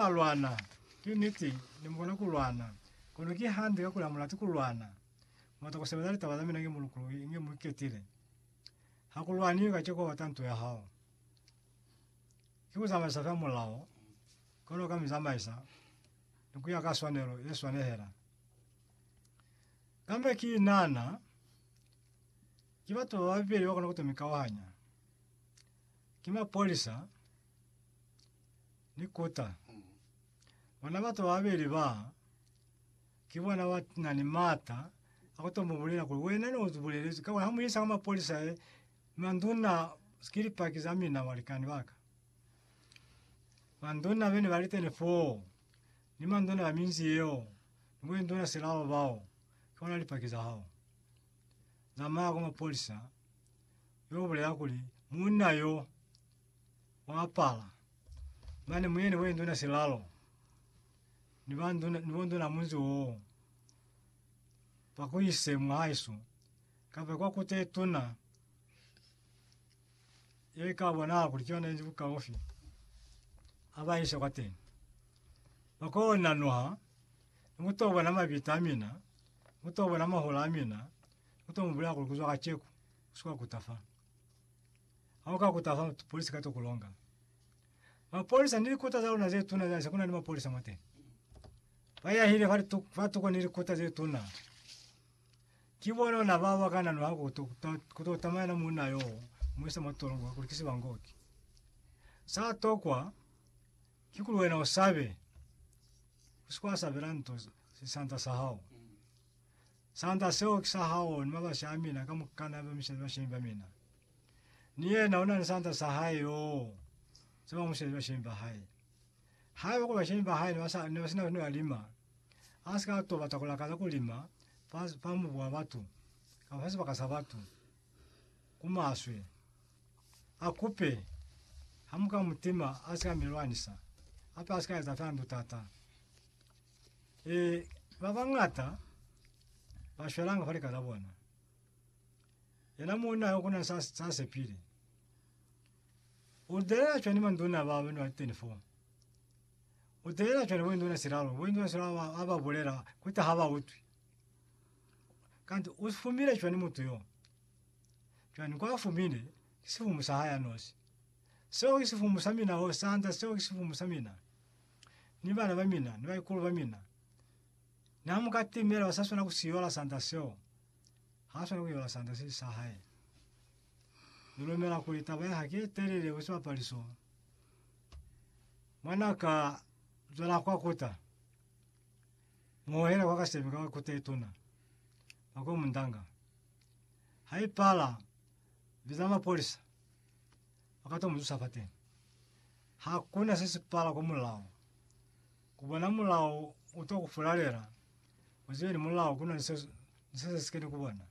a lwana. Ki niti, ne mukona ku lwana. Kono ki hande kakuli ha mu lati ku lwana. Mu bata ku sebeza litaba za mina inge mu lukuluhi, inge mu iketile. Ha ku lwaniwi kaceko bata nto ya hao. Ki ku zamaisa fela mulao, kono ka mi zamaisa ni kuya ka swanelo ye swanehela. Kambe ki nana, ki batu ba babeli ba kona ku to mi kauhanya. Ki mapolisa, ni kota. Bona batu bababeli ba, ki bona ba na ni mata a ku to mu bulela kuli, Wena ne u bulelezwi ka, ha mu isa kwa mapolisa he, manduna ki Lipaki za mina, balikani ba ka. Manduna be ne ba li teni foo, ni manduna ba minzi yeo, ni bo induna silao bao, ki bona Lipaki za hao. Zamaya kwa mapolisa, yo bulela kuli, Munna yo, Wa apala. Mane mu yene we nduna silalo. Ni ba nduna, ni bo nduna munzi woo. Ba ku ise mwa haesu. Ka be kwa ku te tuna. Ye ka bona kuli ki yona yenzi bukaufi. A ba ise kwa teni. Ba ko nanuha. Ni ku to bona mabita a mina. Ni ku to bona mahola a mina. Ni ku to mu bulela kuli ku zwa kaceku, u si ka kuta fa. Ha u ka kuta fa polisi ka to ku longa. Mapolisa ni likuta za luna ze tuna za se kuna ni mapolisa mo teni. Ba yahile fa litu, fa tuko ni likuta ze tuna. Ki bona ona ba ba kana no ha ku to ku to tamaya na muna yo mo se mo tolongo ku likisi bangoki. Sa tokwa ki ku wena o sabe. Usikwa sabela nto sisanta sa hao. Sanda seo ki sa hao ni mabasi a mina kamukana ba misezi bashemi ba mina. Ni yena una ni sanda sa hae yoo sa ba musezi bashemi ba hae. Haiba kuli bashemi ba hae ne ba sina ni ba lima, a si ka to bata ku lakaza ku lima fa, fa mubu wa batu, kamba fa sibaka sa batu, ku maswe. A kupe, ha mu ka mu tima, a si ka mi lwanisa, hape a si ka eza fe handu taata. Ee, ba bañata ba shwelanga fa lika la bona. Yena muuna yo kuna sa, sa sepile. U delela cwani manduna ba bana ba 24? U delela cwani bo induna silalo? Bo induna silalo ba, ba ba bulela kuti ha ba utwi. Kanti u fumile cwani mutu yo? Cwani kwa fumile ki sifumu sa hae anosi. Seo ki sifumu sa mina ho sanda, seo ki sifumu sa mina. ni bana ba mina, ni baikulu ba mina, ni ha muka timela, ba sa swana ku si yola sanda seo. Ha swana ku yola sanda se si sa hae. Ni lumela kuli taba ya hake ye telele ku sibapali so, mwa na ka zwela kwa kuta, mu hohela kwa kasemi ka kuta ye tuna, ba ko mundanga. Ha i pala, biza mapolisa, ba ka to mu zusa fateni. Hakuna se si pala ku mulao. Ku bona mulao u to ku fulalela, u zibe ni mulao kuna ni se, ni se se sike ni ku bona.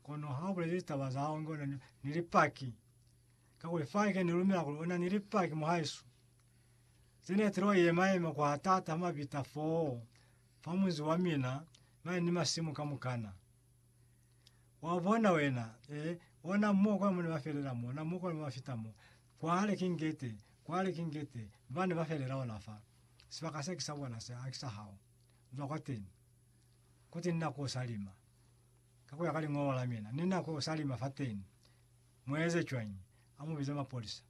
Kono ha u bulezi litaba za hao inge una ni, ni lipaki, kakuli faike ni lumela kuli una ni lipaki muhaisu, ze ne tilo yema yema ku hatata ha mabita foo fa munzi wa mina mane ni masimu kamukana. Wa bona wena, eh, ona mo kwa mone ba felela mo, ona mo kwa ba fita mo. Kwale ki ngete, kwale ki ngete, bane ba felela ona fa. Sibaka se ki sa bona se, haki sa hao. Zwa kwateni. Kuti ni na ku salima. Ka kuya ka liñolo la mina, ni na ku salima fateni. Mu eze cwañi? Amu bize mapolisa.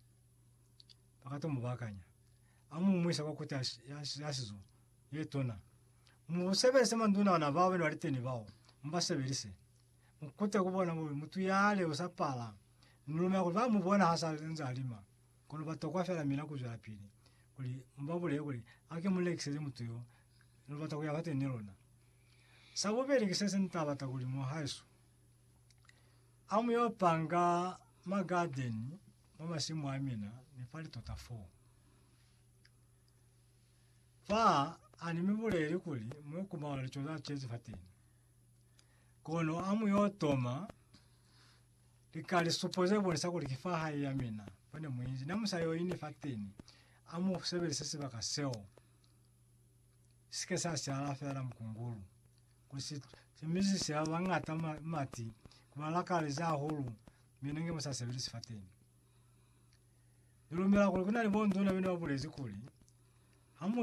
Baka to mu bakanya. Amu mu ise kwa kuti ya, ya, ya sizo, ye tuna. Mu sebelise manduna ona bao bena liteni bao, mu ba sebelise. Mu kute ku bona kuli mutu yale u sa pala, ni lumela kuli ba mu bona ha sa nze a lima. Kono ba tokwa fela mina ku zwelapili kuli mu ba bulele kuli, Hake mu lekiseze mutu yo, lu bata ku ya fateni ni luna. Sa bubeli ki se se ni ta bata kuli mu haesu, Ha mu yo panga magadeni mwa masimu a mina, ni fa litota foo. Fa a ni mi buleli kuli mu yo kumala lico za cezi fateni. Kono a mu yo toma lika lisupo ze bonisa kuli ki fa hae ya mina fa ne mu inzi. Na mu sa yo ini fateni, a mu sebelise sibaka seo si ke sa siala fela mukungulu, kuli si simizise ba bañata mati, ku ba lakalezi hahulu mina nge mu sa sebelisi fateni. Ni lumela kuli ku na ni bo nzuna bene ba bulezi kuli, Ha mu